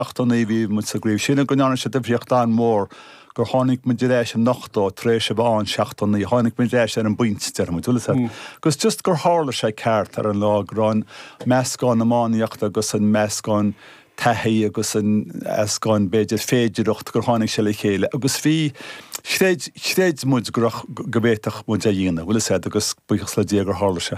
Seachtó naoi bhí muid sa gcraobh sin go ndearna sé difríocht an-mhór gur tháinig muid ar ais i n-ochtó tar éis a bheith ann seachtó naoi. Tháinig muid ar ais ar an bpointe, deir muid. Bhfuil a fhios agat, agus just gur tharla sé ceart ar an lá go raibh an meascán iománaíochta agus an meascán taithí agus an meascán, b'fhéidir, féidireacht gur tháinig sé le chéile agus bhí, chreid, chreid muid go raibh, go bhféadfadh muid é dhéanamh. Bhfuil a fhios agat, agus buíochas le Dia gur tharla sé.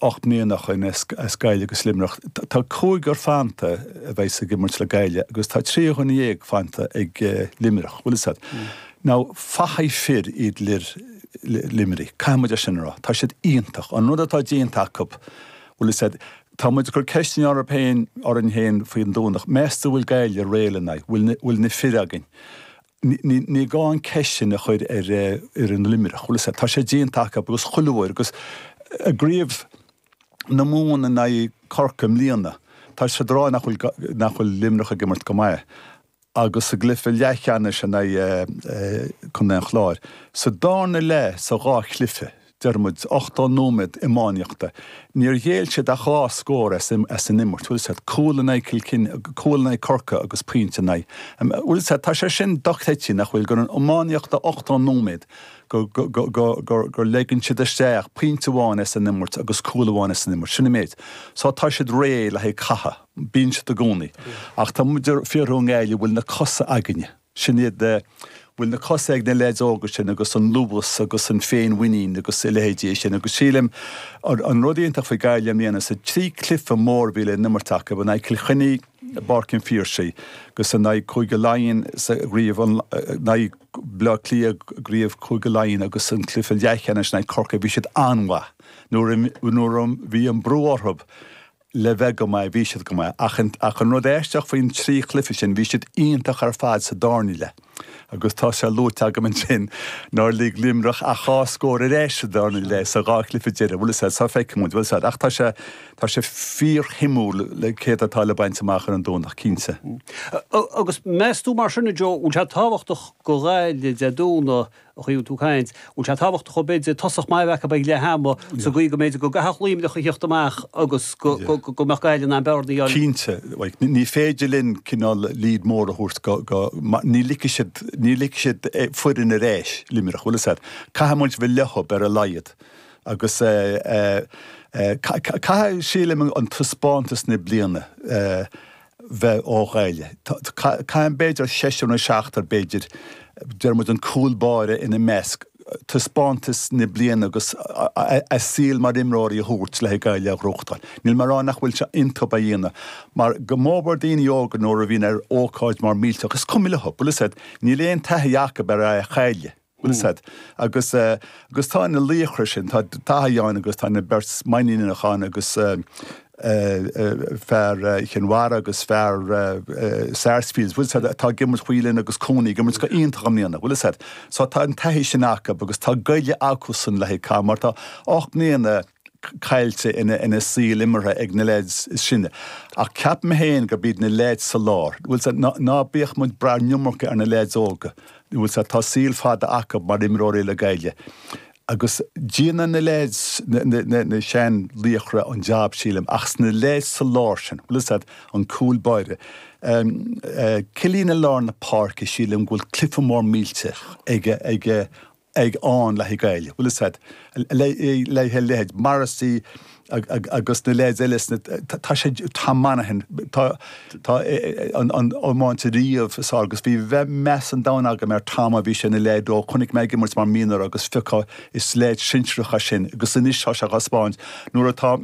ocht mbliana ó shin as Gaillimh agus Luimneach. Tá cúigear fanta a bheidh ag imirt le Gaillimh agus tá trí dhuine dhéag fanta ag Luimneach. Bhfuil a fhios agat. Now, fathaigh fir iad fir Luimnigh. Caithfidh muid é sin a rá. Tá siad iontach. An rud atá déanta acu, bhfuil a fhios agat, tá muid ag cur ceisteanna oraibh féin, orainn féin faoi an Domhnach. Meas tú bhfuil Gaillimh réidh lena aghaidh? Bhfuil na bhfuil na fir againn? Ní gá an ceist sin a chur ar fhoireann Luimneach, bhfuil a fhios agat, tá sé déanta acu agus chuile uair agus i gCraobh na Mumhan in aghaidh Corcaigh i mbliana, tá siad a rá nach bhfuil, nach bhfuil Luimneach ag imirt go maith agus sa gcluiche leathcheannais in aghaidh Chontae an Chláir, sa dárna leath sa dhá chluiche, Deir muid ochtó nóiméad iománaíochta. Níor ghéill siad ach dhá scór as an imirt. Bhfuil a fhios agat, cúl in aghaidh Chill Chainnigh, cúl in aghaidh Chorcaí agus pointe in aghaidh. Bhfuil a fhios agat, tá sé sin dochreidte, nach bhfuil, gur in iománaíocht a ochtó nóiméad, gur ligeann siad isteach pointe amháin as an imirt agus cúl amháin as an imirt. Sin an méid. So tá siad réidh le haghaidh catha. Bíonn siad i gcónaí. Ach tá muid ag fiafraí i nGaillimh, bhfuil na cosa againne. Sin iad a bhfuil na cosa ag na leaids óga sin agus an luas agus an féinmhuinín agus a leithéidí sin agus sílim an rud iontach faoi Gaillimh i mbliana, sa trí cluife mór a bhí le n-imirt acu, in aghaidh Cill Chainnigh i bPáirc an Phiarsaigh agus in aghaidh Chúige Laighean sa gcraobh, in aghaidh Bhaile Átha Cliath i gcraobh Chúige Laighean agus an cluife leathcheannais in aghaidh Corcaigh, bhí siad an-mhaith nuair a bhí an brú orthu le bheith go maith, bhí siad go maith, ach an, ach an rud aisteach faoin trí chluiche sin, bhí siad iontach ar fad sa dárna leath agus tá sé luaite agam ansin nár lig Luimneach ach dhá scór ar ais sa dárna leath sa dhá chluiche deireadh, bhfuil a fhios agat, so feicfidh muid, bhfuil a fhios agat, ach tá sé, tá sé fíorshuimiúil céard atá le baint amach ar an Domhnach, cinnte. Agus meas tú mar sin, a Joe, bhfuil sé tábhachtach do Ghaillimh Dé Domhnaigh An chaoi a bhfuil tú ag caint. An bhfuil sé tábhachtach go mb'fhéidir tosach maith a bheith acu ag leath ama sa gcaoi go mb'fhéidir go gcaithfeadh Luimneach a thíocht amach agus go mbeadh Gaillimh in ann bearna a dhéanamh? Cinnte. Ní féidir linn cineál lead mór a thabhairt go, ní ligfidh siad, ní ligfidh siad foireann ar ais, Luimneach, bhfuil a fhios agat, caithfidh muid bheith leothub ar a laghad agus caithfidh, sílim an taispeántas na bliana, bheith ó Ghaillimh. Caithfidh b'fhéidir seisear nó seachtar, b'fhéidir, deir muid an cúl báire ina measc, taispeántas na bliana agus a saol mar imreoirí a thabhairt le Gaillimh a ghnóthachtáil. Níl mé a rá nach bhfuil sé iontub é a dhéanamh mar go mór mór daoine óga nuair a bhíonn ar ócáid mór millteach, is cuma leo, bhfuil fhios a'd, níl aon taithí acub ar a chailleadh. Bhfuil fhios a'd. Agus tá na laochra sin, tá Dáithí ann agus tá na beirt Mainníneach ann agus fear Chinn Mhara agus fear Sarsfields, bhfuil fhios a'd, atá ag imirt Whelan agus Cooney ag imirt go iontach i mbliana, bhfuil fhios a'd. So tá an taithí sin acu agus tá goile acusan le haghaidh cath mar tá ocht mbliana, caillte ina saol imeartha ag na leaids is sine. Ach ceapaim féin gurb iad na leaids sa lár, bhfuil fhios a'd, ná bíodh muid ag brath an iomarca ar na leaids óga, bhfuil fhios a'd, tá saol fada acu mar imreoirí le Gaillimh. Agus déanfaidh na leaids, na sean laochra an jab sílim, ach is na leaids sa lár sin, bhfuil fhios a'd, an cúl báire, Killeen i lár na páirce, sílim go bhfuil cluife mór millteach ag ag aon leithéid Gaillimh, bhfuil fhios a'd, leithéid, leithéid Morrissey agus na leaids eile sin, atá sé, Tom Monaghan, tá, tá an iomáint riamh is fhearr, agus bhí meas an domhain agam ar Tom ó bhí sé ina leaid óg, chonaic mé ag imirt mar mhionúr agus fiche, is leis na sinsearacha sin agus anois tá sé á thaispeáint nuair atá,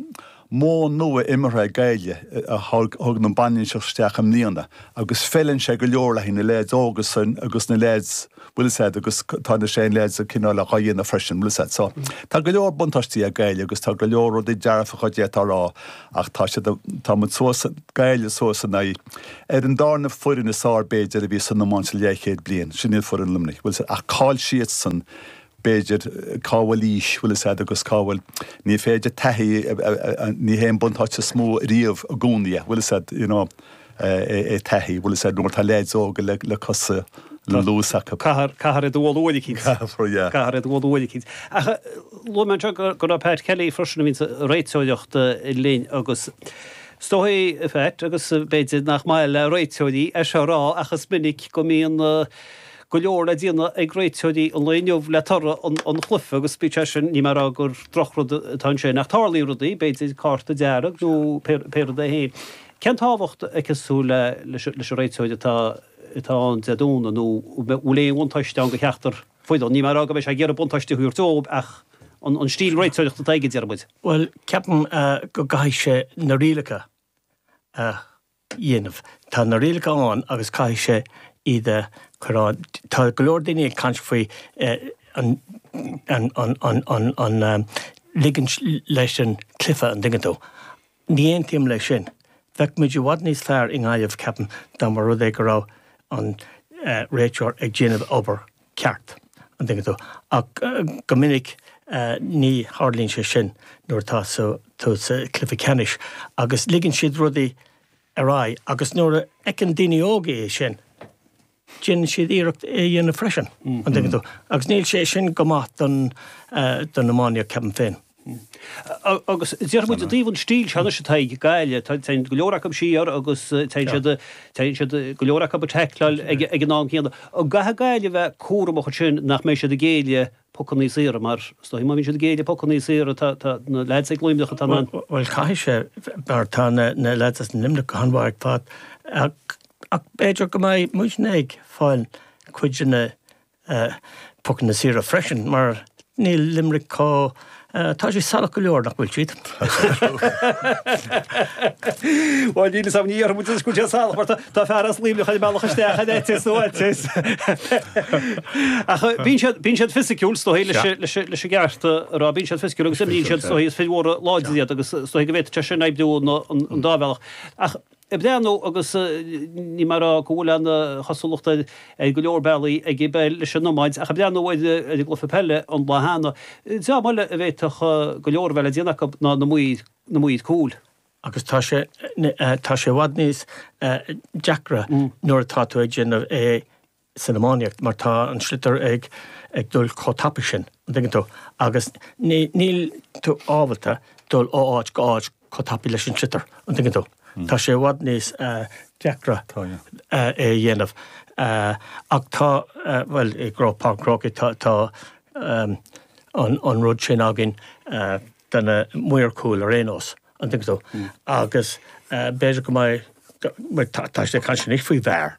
Modh nua imeartha ag Gaillimh a thug an bhainistíocht isteach i mbliana agus feileann sé go leor leis na leaids óga sin agus na leaids, bhfuil fhios a'd, agus tá na sean leaids cineál dhá dhéanamh freisin, bhfuil fhios a'd. So, tá go leor buntáistí ag Gaillimh agus tá go leor rudaí dearfacha a d'fhéadfá a rá ach tá siad, tá muid suas, Gaillimh suas in aghaidh, ar an dárna foireann is fhearr b'fhéidir a bhí san iomáint le leathchéad bliain, sin í foireann Luimnigh, bhfuil fhios a'd, ach cá'il siadsan? b'fhéidir, cá bhfuil aois, bhfuil fhios a'd, agus cá bhfuil, ní féidir taithí, ní hé an buntáiste is mó riamh i gcónaí é, bhfuil fhios a'd, you know, é taithí, bhfuil fhios a'd, nuair atá leaids óga le, le cosa, le luas acu. Caithfear, caithfear iad a bhualadh uair eicínt. Caithfear, yeah. Caithfear iad a bhualadh uair eicínt. Ach luaigh mé anseo go, go raibh Pat Kelly freisin a bhíonns a' réiteoireacht linn agus is dóigh, a Phat, agus b'fhéidir nach maith le réiteoirí é seo a rá ach is minic go mbíonn, go leor le déanamh ag réiteoirí an lae inniu le toradh an chluife agus bíodh sé sin, níl mé ag rá gur drochrud atá ansin, ach tarlaíonn rudaí, b'fhéidir cárta dearg nó pé rud é fhéin. Cén tábhacht a fheiceas tú leis an réiteoir atá ann Dé Domhnaigh nó an bhfuil aon bhuntáiste ann do cheachtar foireann? Níl mé ag rá go mbeidh sé ag iarraidh buntáiste a thabhairt dóibh ach an stíl réiteoireachta atá aige, deir muid. Bhuel, ceapaim go gcaithfidh sé na rialacha a. dhéanamh. Tá na rialacha ann agus caithfidh sé iad a chur ann. Tá go leor daoine ag caint faoi an ligint leis an cluiche, an dtuigeann tú. Ní aontaím leis sin. Bheadh muid i bhfad níos fearr i nGaillimh, ceapaim, dá mba rud é go raibh an réiteoir ag déanamh obair ceart, an dtuigeann tú, ach go minic ní tharlaíonn sé sin nuair atá tú sa chluiche ceannais agus ligeann siad rudaí ar aghaidh agus nuair a fheiceann daoine óga é sin, déanann siad iarracht é a dhéanamh freisin, an dtuigeann tú, agus níl sé sin go maith don iománaíocht, ceapaim féin. Agus déarfaidh muid i dtaobh an stíl seo anois atá ag Gaillimh, téann go leor acu siar agus tá siad, tá siad, go leor acu ag teicleáil ag an am céanna. An gcaithfidh Gaillimh a bheith cúramach ansin nach mbeidh siad ag géilleadh pocanna saora mar, is dóigh, má bhíonn siad ag géilleadh pocanna saora, tá, tá na leaids ag Luimneach atá in ann. Bhuel, caithfidh sé, mar tá na leaids as Luimneach go han-mhaith ag fás ach, ach b'fhéidir go mbeidh muidne ag fáil cuid de na Pocanna saora freisin, mar níl Limerick chomh, tá siad salach go leor, nach bhfuil siad? Bhuel, níl fhios a'm, ní dhéarfaidh muid anois go bhfuil siad salach, mar tá fear as Luimneach ag mealladh isteach in eiteas nó eiteas. Ach bíonn siad, bíonn siad fisiciúil, is dóichí, leis, leis an gceart a rá, bíonn siad fisiciúil agus imríonn siad, is dóichí, is fir mhóra láidre iad agus is dóichí go bhféadfadh sé sin oibriú ina, an dá bhealach. Ach. ag breathnú agus níl mé ag rá go bhfuil an-chosúlacht ar go leor bealaí ag an bpeil leis an iomáint ach ag breathnú ar an gcluiche peile an lá cheana. Dream eile a bhféadfadh go leor a bheith le déanamh acu ná na maoir cúil. Agus tá sé tá sé i bhfad níos deacra nuair atá tú ag déanamh é san iománaíocht mar tá an sliotar ag dul chomh tapaidh sin, an dtuigeann tú, agus níl tú ábalta dul ó áit go áit chomh tapaidh leis an sliotar, an dtuigeann tú. Tá sé i bhfad níos deacra é a dhéanamh ach tá, bhuel, i gCro, Páirc an Chrócaigh, tá an rud sin againn do na maoir chúil ar aon nós, an dtuigeann tú, agus b'fhéidir go mbeidh, tá siad ag caint anois faoi VAR.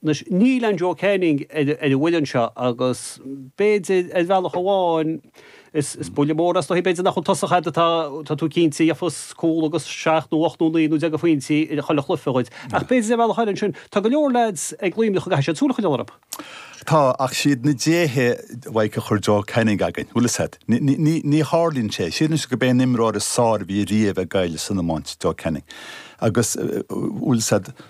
Anois, níl aon Joe Canning ar an bhfoireann seo agus b'fhéidir, ar bhealach amháin, is buille mór é, is dóichí, b'fhéidir nach bhfuil tosaí a'd atá tú cinnte a gheobhas cúl agus seacht nó ocht nó naoi nó deich de phointí i chuile chluiche dhuit. Ach b'fhéidir ar bhealach eile ansin, tá go leor leaids ag Luimneach a gcaithfidh siad súil a choinneáil orthu. Tá, ach siad na déithe uaidh a chuir Joe Canning againn, bhfuil 'fhios a'd. Ní tharlaíonn sé. Síleann siad gurb é an t-imreoir is fearr a bhí riamh ag Gaillimh san iomáint, Joe Canning agus, bhfuil 'fhios a'd,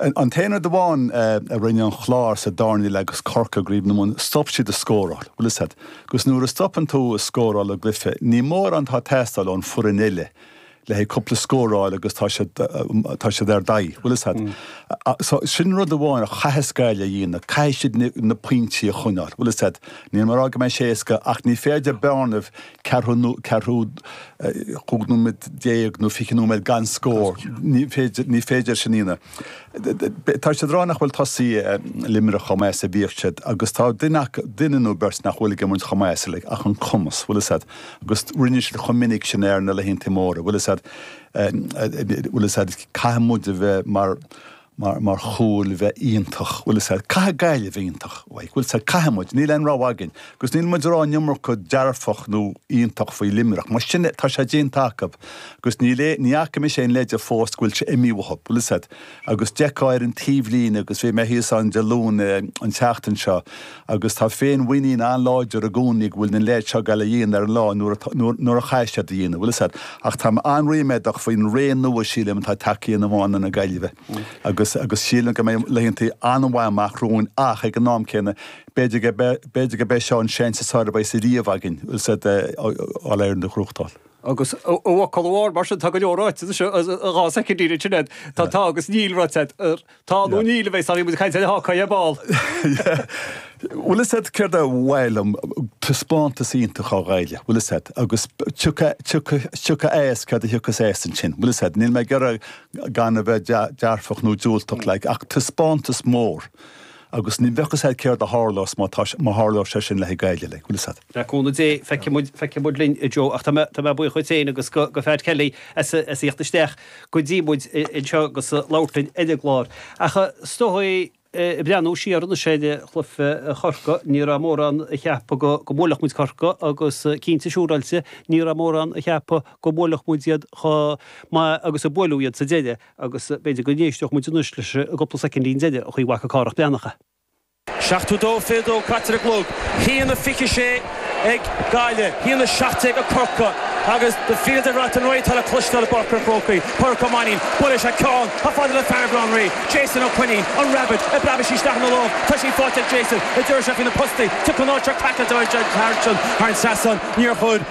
An t-aon rud amháin a rinne an Clár sa darna leath agus Corcaigh i gCraobh na Mumhan, stop siad ag scóráil. Bhfuil a fhios a'd, agus nuair a stopann tú ag scóráil i gcluiche, ní mórán atá ag teastáil ón foireann eile, le haghaidh cúpla scór a fháil agus tá siad, tá siad ar d'aghaidh. Bhfuil a fhios a'd. So, sin rud amháin a chaithfeas Gaillimh a dhéanamh, caithfidh siad na pointí a choinneáil. Bhfuil a fhios a'd, níl mé ag rá go mbeidh sé éasca ach ní féidir bearna ceathrú, ceathrú, cúig nóiméad déag nó 20 nóiméad gan scór. Ní féidir, ní féidir sin a dhéanamh. Tá siad ag rá nach bhfuil tosaithe Luimnigh chomh maith is a bhíodh siad agus tá duine acu, duine nó beirt nach bhfuil ag imirt chomh maith is uilig ach an cumas, bhfuil a fhios a'd, agus rinne siad chomh minic sin ar na laethanta móra, bhfuil a fhios a'd, bhfuil a fhios a'd, caithfidh muid a bheith mar, mar, mar chúil bheith iontach, bhfuil a fhios a'd, caithfidh Gaillimh iontach, like, bhfuil a fhios a'd, caithfidh muid, níl aon rogha againn agus níl muid ag rá an iomarca dearfach nó iontach faoi Luimneach, mar sin é, tá sé déanta acu agus níl aon, ní fhaca mise aon leide fós go bhfuil sé imithe uathu, bhfuil a fhios a'd, agus d'fheicfeá ar an taobhlíne agus bhí mé thíos ann Dé Luain, an tseachtain seo, Agus tá féinmhuinín an-láidir i gcónaí go bhfuil na leaids seo ag goil á dhéanamh ar an lá nuair a chaithfeas siad é a dhéanamh, bhfuil a fhios a'd. Ach táim an-ríméadach faoin ré nua, sílim, atá ag teacht in iomáint na Gaillimhe. Agus agus sílim go mbeidh laethanta an-mhaith amach romhainn ach, ag an am céanna, b'fhéidir go b'fhéidir gurb é seo an seans is fearr a bheas riamh againn, bhfuil a fhios a'd, All Ireland a ghnóthachtáil. Agus i bhfocal amháin, mar sin, tá go leor ráite, is é, dhá soicind, Sinéad, tá, tá agus níl ráite agat. Tá, nó níl, a bheidh, sorry, muid ag caint ar an Hawkeye ar ball. Bhfuil a fhios a'd, céard ba mhaith liom, taispeántas iontach ó Ghaillimh, bhfuil a fhios a'd, agus tiocfaidh as céard a thiocfas as ansin, bhfuil a fhios a'd, níl mé ag iarraidh gan a bheith dearfach nó diúltach, like, ach taispeántas mór agus ní bheadh fhios a'd céard a tharlós má tá, má tharlós sé sin le haghaidh Gaillimh, like, bhfuil a fhios a'd. Le cúnamh Dé, feicfidh muid linn, a Joe, ach tá mé buíoch dhuit féin agus do Phat Kelly as a theacht isteach go dtí muid anseo agus labhairt linn ar an gclár. Ach is dóigh, ag breathnú siar anois ar chluiche Chorcaí, ní raibh mórán a cheap go mbuailfeadh muid Corcaigh agus cinnte siúráilte ní raibh mórán a cheap go mbuailfeadh muid iad chomh maith agus a buaileadh iad sa deireadh agus b'fhéidir go n-éisteodh muid anois leis an gcúpla soicind deireanachaí ag Cárthach Breathnach. 72 fiche dó caite ar an gclog. A haon, a fiche sé ag Gaillimh, a haon, a seacht déag ag Corcaigh agus The Fields of Athenry atá le cloisteáil i bPáirc an Chrócaigh. Pádraic Ó Mainnín, buail leis an ceann chomh fada le fear Bhaile Átha an Rí. Jason Ó Coinín, An Rabbit, ag preabadh isteach ina lámh. Tá sí faighte ag Jason. Díreoidh sé faoi na postaí, tiocfaidh an áit seo craiceáilte thar an trasnán. Níor chuir.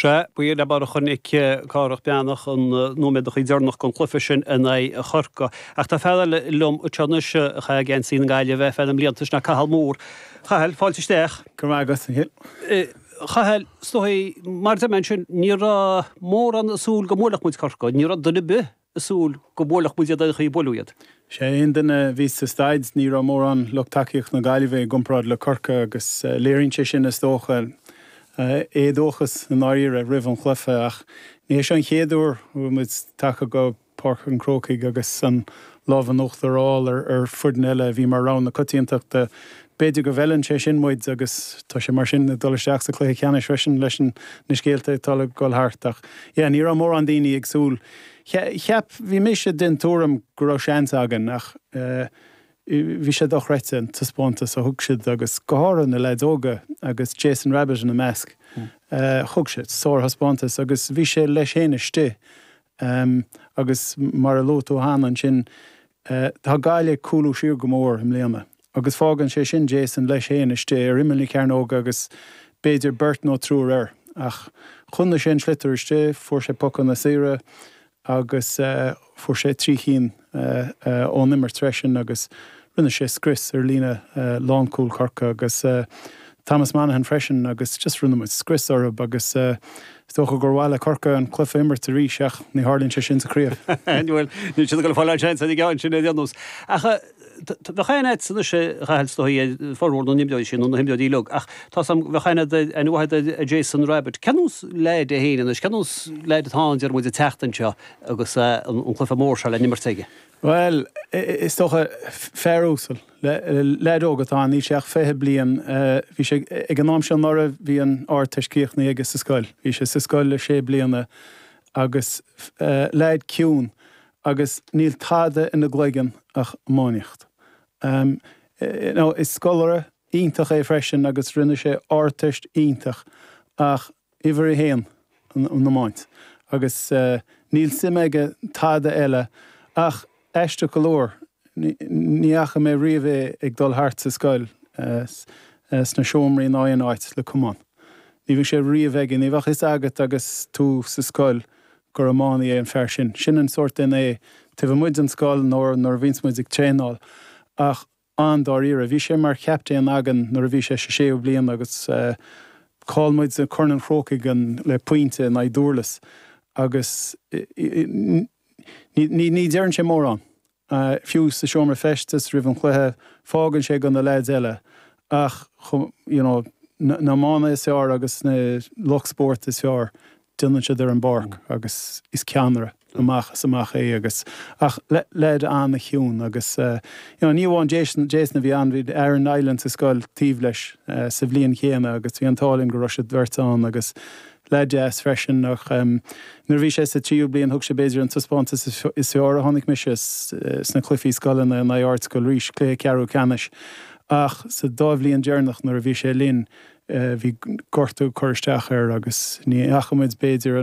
Sea, b'in é an bealach a chonaic Cárthach Breathnach na nóiméadachaí deireanach den chluiche sin in aghaidh Chorcaí. Ach tá fear eile liom anseo anois a chaith geansaí na Gaillimhe ar feadh na mblianta, sin é Cathal Moore. Chathail, fáilte isteach. Go raibh maith agat, a Chill. Chathail, is dóigh, mar a deir mé ansin, ní raibh mórán ag súil go mbuailfeadh muid Corcaigh. Ní raibh duine ar bith a súil go mbuailfeadh muid iad aon chaoi a buaileadh iad. Agus aon duine a bhí sa staid, ní raibh mórán lucht tacaíochta na Gaillimhe i gcomparáid le Corcaigh agus léiríonn sé sin, is dócha, an t-éadóchas i ndáiríre roimh an chluiche. Ach ní hé seo an chéad uair a bhfuil muid tagtha go Páirc an Chrócaigh agus an lámh in uachtar a fháil ar foireann eile a bhí mar rogha na coitiantachta. B'fhéidir go bhfeileann sé sin muid agus tá sé mar sin ag dul isteach sa chluiche ceannais freisin leis na scéalta atá ag dul thart. Ach, yeah, ní raibh mórán daoine ag súil. Cheap, bhí mise den tuairim go raibh seans againn ach bhí sé dochreidte an taispeántas a thug siad agus go háirithe na leaids óga agus Jason Rabbitte ina measc. Thug sé sárthaispeántas agus bhí sé leis féin istigh agus mar a luaigh tú cheana ansin, tá Gaillimh ag cúlú siar go mór i mbliana Agus fágann sé sin Jason leis féin istigh ar imeall na cearnóige agus b'fhéidir beirt nó triúr air. Ach choinnigh sé an sliotar istigh, fuair sé pocanna saora agus fuair sé trí chinn ón imirt freisin agus rinne sé scrios ar líne lánchúil Chorcaí agus Thomas Monaghan freisin agus just rinne muid scrios orthu agus is dócha gur mhaith le Corcaigh an cluiche a imirt arís ach ní tharlaíonn sé sin sa chraobh. Bhuel, níl siad ag dul a fháil ath-sheans ag an gceann sin ar aon nós. Ach. Beidh siad sa nuacht is dóigh ar formhór na n-imreoirí sin, nó na himreoirí uilig, ach tá's agam, beidh an-aird ar an mbuachaill ar Jason Rabbitte. Cén sórt leaid é féin anois, cén sórt leaid atá ann, déarfaidh muid, an tseachtain seo agus an cluiche mór seo le n-imirt aige? Bhuel, is dócha, fear uasal, leaid óg atá ann, níl sé ach fiche bliain, bhí sé, ag an am seo anuraidh, bhí an Ardteist críochnaithe aige sa scoil, bhí sé sa scoil le sé bliana agus leaid ciúin Agus níl tada ina chloigeann ach iománaíocht. You know, is scoláire iontach é freisin agus rinne sé Ardteist iontach ach uimhir a haon, an iomáint. Agus níl suim aige i dtada eile ach, aisteach go leor, ní fhaca mé riamh é ag dul thart sa scoil, sna seomraí ná aon áit, le camán. Ní bhíodh sé riamh aige, ní bheadh fhios agat agus tú sa scoil gur iománaí é an fear sin. Sin an sórt duine é, taobh amuigh den scoil nó nuair a bhíonns muid ag traenáil an-dáiríre. Bhí sé mar chaptaen againn nuair a bhí sé sa séú bliain agus chaill muid Corn an Chrócaigh le pointe in aghaidh Dhurlas agus ní deireann sé mórán. Fiú sa seomra feistis roimh an chluiche, fágann sé go na leaids eile, ach, you know, na hiománaithe is fearr agus na lucht spóirt is fearr, déanann siad é ar an bpáirc agus is ceannaire amach is amach é agus, ach leaid an-chiúin agus, you know, ní amháin Jason, Jason a bhí ann, bhí Aaron Niland sa scoil taobh leis sa bhliain chéanna agus bhí an t-ádh linn go raibh siad beirt ann agus, leath deas freisin. Nuair a bhí sé sa tríú bliain thug sé b'fhéidir an taispeántas is fearr a chonaic mise sna cluifí scoileanna in aghaidh Ardscoil Rís, cluiche ceathrú ceannais. Ach sa dá bhliain deireanach nuair a bhí sé linn bhí gortú ag cur isteach air agus ní fhaca muid b'fhéidir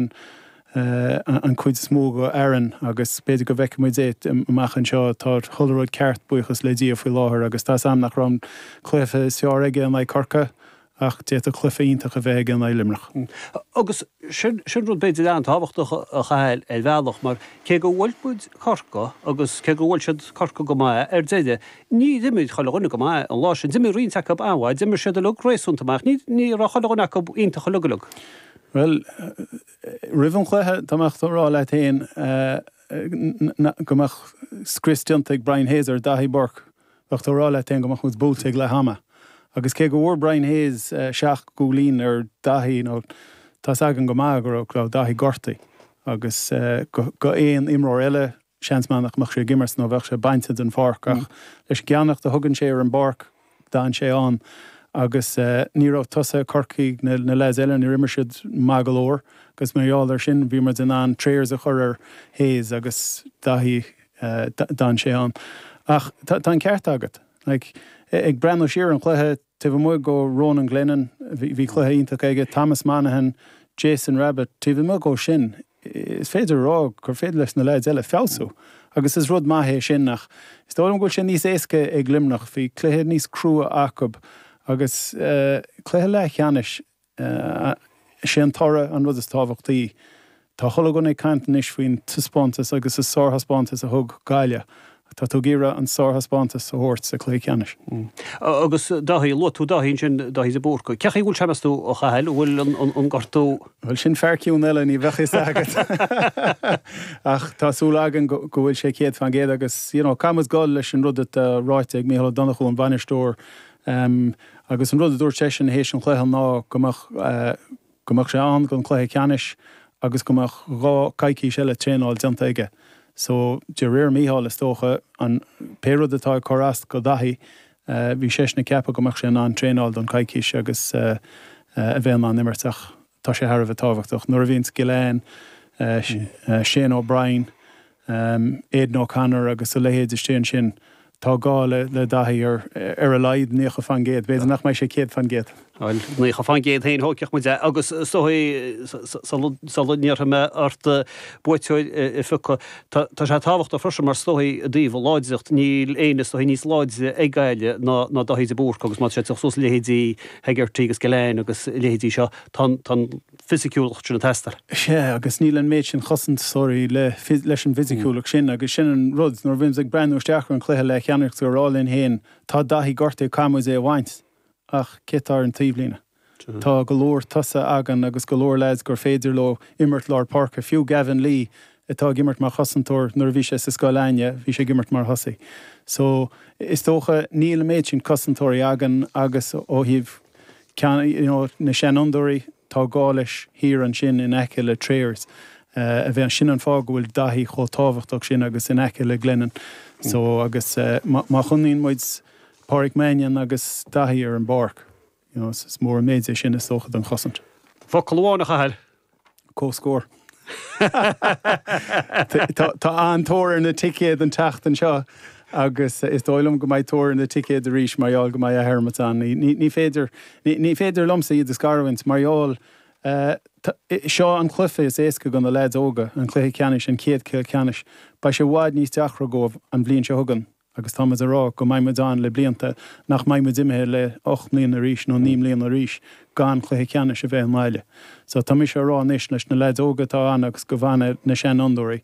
an chuid is mó go Aaron agus b'fhéidir go bhfeicfidh muid é amach anseo. Tá chuile rud ceart, buíochas le Dia, faoi láthair agus tá 's a'm nach raibh an cluiche is fearr aige in aghaidh Corcaigh Ach d'fhéadfadh cluiche iontach a bheith aige in aghaidh Luimneach. Agus sin rud b'fhéidir an-tábhachtach a Chathail, ar bhealach mar cé gur bhuail muid Corcaigh agus cé gur bhuail siad Corcaigh go maith ar deireadh, níor imir chuile dhuine go maith an lá sin. D'imir roinnt acu an-mhaith, d'imir siad uilig réasúnta maith. Ní ní raibh chuile dhuine acu iontach uilig uilig. Bhuel, roimh an chluiche, dá mbeadh tú ag rá leat fhéin go mbeadh scrios déanta ag Brian Hayes ar Daithí Burke, bheadh tú ag rá leat féin go mbeadh muid buailte ag leath ama. Agus cé go bhfuair Brian Hayes seacht gcúilín ar Dhaithí, tá's againn go maith go raibh Daithí gortaithe agus go aon imreoir eile, seans maith nach mbeadh sé ag imirt nó bheadh sé bainte den pháirc. Ach leis an gceannaireacht a thugann sé ar an bpáirc, d'fhan sé ann. Agus ní raibh tosaithe Corcaigh, na leaids eile, níor imir siad maith go leor. Agus mar gheall ar sin, bhí muid in ann pressure a chur ar Hayes agus Daithí. yeah, d'fhan sé ann. Ach tá an ceart agat. Like, ag breathnú siar ar an chluiche, taobh amuigh go Ronan Glennon, bhí cluiche iontach aige, Thomas Monaghan, Jason Rabbit, taobh amuigh go sin, is féidir a rá gur féidir leis na leaids eile feabhsú. Agus is rud maith é sin ach is dóigh liom go bhfuil sé níos éasca ag Luimneach, bhí cluiche níos crua acub agus, eh, cluiche leathcheannais, Is é an toradh an rud is tábhachtaí. Tá chuile dhuine ag caint anois faoin taispeántas agus an sárthaispeántas a thug Gaillimh. Tá tú ag iarraidh an sárthaispeántas a thabhairt sa chluiche ceannais. Agus Dáithí, luaigh tú Dáithí ansin, Dáithí de Búrca. Cé chaoi a bhfuil sé, meas tú, a Chathail, an bhfuil an gortú? Bhuel, sin fear ciúin eile, ní bheadh a fhios agat. Ach tá súil againn go bhfuil sé céad fán gcéad agus, you know, caithfimid dul leis an rud atá ráite ag Micheál Donoghue, an bainisteoir, Um, agus an rud a dúirt seisean théis an chluiche ná go mbeadh, eh, go mbeadh sé ann don chluiche ceannais agus go mbeadh dhá, coicís eile traenáil déanta aige. So, de réir Micheál is dócha, an, pé rud atá ag cur as go Dhaithí, eh, bhí seisean ag ceapadh go mbeadh sé in ann traenáil don choicís agus, eh, eh, a bheith in ann imirt ach, Tá sé thar a bheith tábhachtach. Nuair a bhíonns Gillane, Shane O'Brien, Aidan O'Connor agus a leithéid istigh ansin, tá gá le Daithí ar a laghad nócha fán gcéad. B'fhéidir nach mbeidh sé céad fán gcéad. Bhuel, nócha fán gcéad féin, thóigfeadh muid é. Agus is dóigh, sula n-iarrfaidh mé ort buaiteoir a phiocadh, tá sé tábhachtach freisin mar is dóigh, i dtaobh láidreacht, níl éinne is dóigh níos láidre ag Gaillimh ná Daithí de Búrca agus má tá sé ag teacht suas le leithéidí, Hegarty agus Gillane agus a leithéidí seo, tá an fisiciúlacht sin ag teastáil. Sea, agus níl an méid sin cosantóirí leis an bhfisiciúlacht sin agus sin an rud, nuair a bhíonns tú ag breathnú isteach ar an chluiche le Ciarraí tú ag rá linn féin, tá Daithí gortaithe agus caithfidh muid é a bhaint, ach cé atá ar an taobhlíne? Tá go leor tosaithe againn agus go leor leaids gur féidir leo imirt lár páirce, fiú Gavin Lee, atá ag imirt mar chosantóir, nuair a bhí sé sa Scoil Éinde, bhí sé ag imirt mar thosaí. So, is dócha, níl an méid sin cosantóirí againn agus ó thaobh ceann, you know, na seanfhondúirí, tá gá leo thiar ansin in aice le Trayers a bheith, sin an fáth go bhfuil Daithí chomh tábhachtach sin agus in aice le Glennon. So, agus má choinníonn muid Pádraic Mannion agus Daithí ar an bpáirc, Is mór an méid é sin, is dócha, don chosaint. Focal amháin, a Chathail. Comhscór. Tá an-tóir ar na ticéid an tseachtain seo agus is dóigh liom go mbeidh tóir ar na ticéid arís mar gheall go mbeidh athimirt ann. Ní féidir, ní féidir liomsa iad a scarúint mar gheall seo an cluiche is éasca do na leaids óga, an cluiche ceannais, an chéad chluiche ceannais. Beidh sé i bhfad níos deacra dóibh an bhliain seo chugainn. Agus tá muid ag rá nach mbeidh muid ann le blianta, nach mbeidh muid imithe le ocht mbliana arís nó naoi mbliana arís gan cluiche ceannais a thabhairt abhaile. So tá mise ag rá anois leis na leaids óga atá ann agus go bhfana na seanfhondúirí,